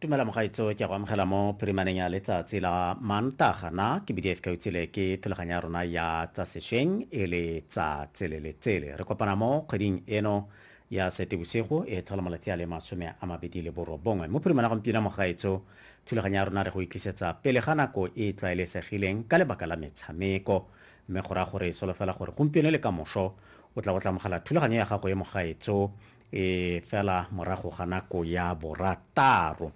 tumela mogaitso ke go amogela mo phirimaneng ya letsatsi la mantaga na ke bdf ka utsile ke thulaganyo ya rona ya tsa sešweng e le tsa tsele le tsele re kopana mo kgweding eno ya setebosigo e tlhola malatsi a le masome a mabedi le borobongwe mo phirimana gompieno mogaitso thulaganyo ya rona re go itlisetsa pele ga nako e e tlwaelesegileng ka lebaka la metshameko mme go raya gore e solofela gore gompieno le ka moso o tla go tlamogela thulaganyo ya gago e mogaetso e fela morago ga nako ya borataro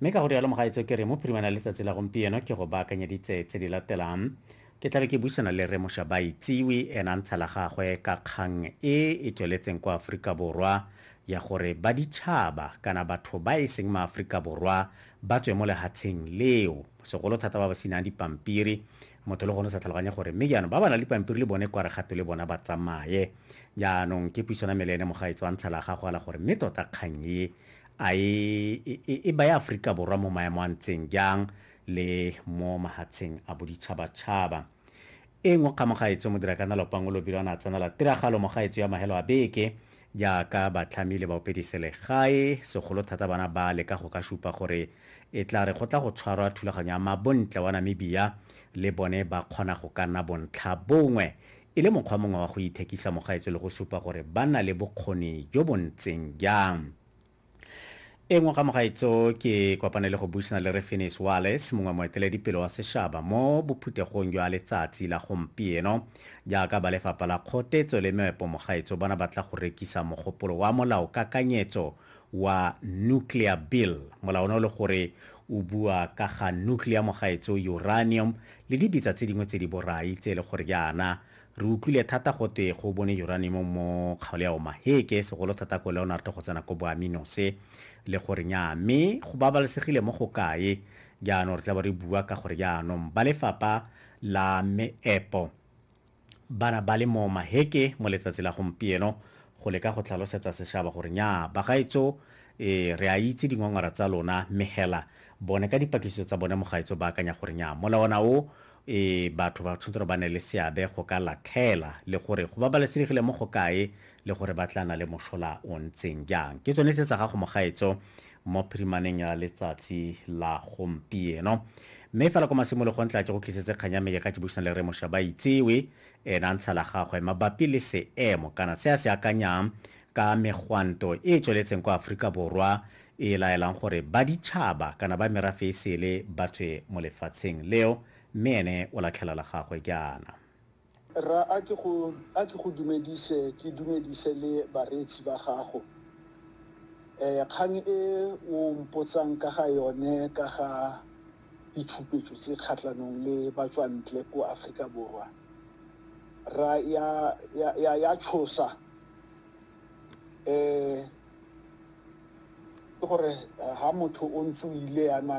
mme ka go rialo mogaetso ke re mo phirimana letsatsi la gompieno ke go baakanyeditse tse di latelang ke tlabe ke buisana le re mosha ba itsiwe ena ntsha la gagwe ka kgang e e tsweletseng kwa aforika borwa ya gore ba ditšhaba kana batho ba e seng maaforika borwa ba tswe mo lehatsheng leo segolo thata ba ba senang dipampiri Motho le gone o sa tlhaloganye gore mme jaanong ba ba nang le pampiri le bone kware gape le bona ba tsamaye. Jaanong ke puisano ya me le ene mogaetsho a ntsha la gagwe a la gore mme tota kgang e a e e e baya Aforika Borwa mo maemo a ntseng jang le mo mahatsheng a boditšhabatšhaba. E nngwe kgang mogaetsho Modirakanalo Pangolobilo a ne a tsenela tiragalo mogaetsho ya mahelo a beke Jaaka batlhami le baopediselegae, segolo thata bana ba leka go ka supa gore e tla re go tla go tshwarwa thulaganyo ya mabontle wa Namibia, le bone ba kgona go ka nna bontlhabongwe, e le mokgwa mongwe wa go ithekisa mogaetsho le go supa gore ba na le bokgoni jo bo ntseng jang. E nngwe ga mogaetso ke kopane le go buisana le Re Finis Wallace, mongwe moeteledipele wa seshaba mo bophuthegong jwa letsatsi la gompieno. Jaaka ba Lefapha la Kgotetso le Meepo mogaetso bona ba tla go rekisa mogopolo wa molaokakanyetso wa Nuclear Bill. Molao ono le gore o bua ka ga nuclear mogaetso, uranium le dibitsa tse dingwe tse di borai tse e le gore jaana Re utlwile thata go twe go bone uranium mo kgaolo ya Omaheke, segolo thata ko Leonard go tsena ko Boaminose. Le gore nyaa, mme go babalesegile mo go kae? Jaanong re tla bo re bua ka gore jaanong ba lefapha la meepo ba na ba le mo Omaheke mo letsatsi la gompieno go leka go tlhalosetsa seshaba gore nyaa, bagaetso ee, re a itse dingongora tsa lona, mme hela bone ka dipatlisiso tsa bone mogaetso ba akanya gore nyaa, molawana o e batho ba tshwanetse gore ba ne le seabe go ka latlhela le gore go babalesegile mo go kae le gore ba tla na le mošola o ntseng jang. Ke tsone tse tsa gago mogaetso mo phirimaneng ya letsatsi la gompieno. Mme fela kwa masimologong tla ke go tlisetse kgang ya me ke ka ke buisana le Rre Moshabaitsewe ena ntsha la gagwe mabapi le seemo kana se a se akanyang ka megwanto e e tsweletseng kwa Aforika Borwa e e laelang gore baditšhaba kana ba merafe e sele ba tswe mo lefatsheng leo, mme ene o latlhela la gagwe jaana. Rra, a ke go, a ke go dumedise, ke dumedise le bareetsi ba gago. E, kgang e o mpotsang ka ga yone ka ga ditshupetso tse kgatlhanong le batswantle ko Afrika Borwa, rra, ya, ya, ya, ya tshosa. E, Ke gore ha motho o ntse o ile yana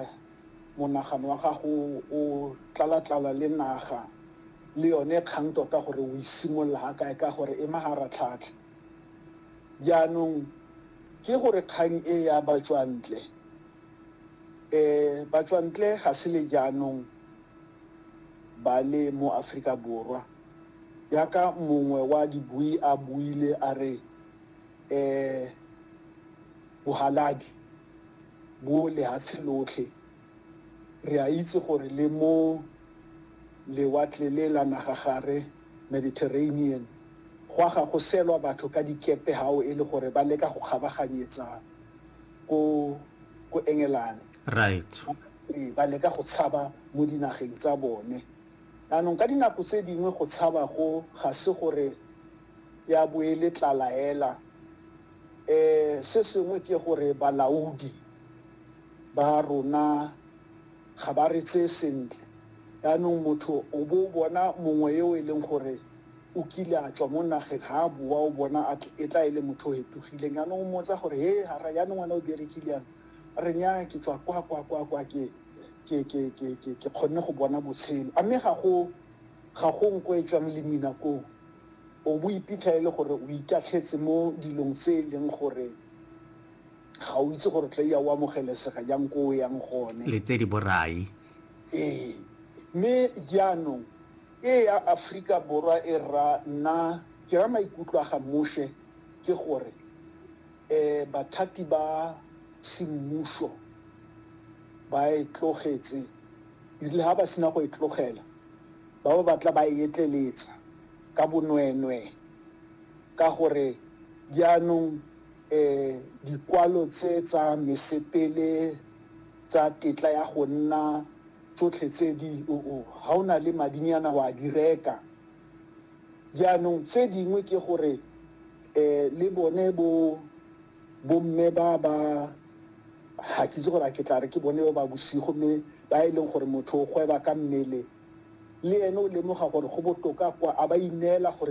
monagano wa gago o tlala-tlala le naga le yone kgang tota gore o e simolola ha kae ka gore e maharatlhatlha. Jaanong ke gore kgang e ya batswantle batswantle ga se le jaanong ba le mo Aforika Borwa yaka mongwe wa dibui a buile a re Bohaladi bo lehatshe lotlhe, re a itse gore le mo Lewatle le la Nagagare, Mediterranean, go a ga go selwa batho ka dikepe hao e le gore ba leka go kgabaganyetsa ko, ko Engelane. Right. Ee, ba leka go tshaba mo dinageng tsa bone. Jaanong ka dinako tse dingwe go tshaba go ga se gore ya bo e le tlalaela. Se sengwe ke gore balaodi ba rona ga ba re tseye sentle, yaanong motho o bo o bona mongwe yo e leng gore o kile a tswa mo nageng, ga a boa o bona e tla e le motho o fetogileng, yaanong o mmotsa gore, he hara yaanong wena o berekile yana? A re, nnyaa ke tswa kwa, kwa, kwa, kwa ke kgonne go bona botshelo. A mme ga go. Ga go nko e tswang lemina koo. O bo o iphitlha e le gore o itatlhetse mo dilong tse e leng gore ga o itse gore o tla iya o amogelesega jang ko o yang gone. Le tse di borai. Ee. Mme jaanong e ya Aforika Borwa e ra nna, ke ra maikutlo a ga Moshe ke gore bathati ba semmuso ba e tlogetse. E rile ha ba sena go e tlogela, ba bo ba tla ba e etleletsa ka bonweenwee, ka gore jaanong dikwalo tse tsa mesepele tsa tetla ya go nna tsotlhe tse di, ga o na le madinyana wa di reka. Jaanong tse dingwe ke gore le bone bo. Bomme ba ba, ga ke itse gore a ke tla re ke bone ba ba bosigo, mme ba e leng gore motho o gweba ka mmele, le ene o lemoga gore go botoka kwa a ba ineela gore.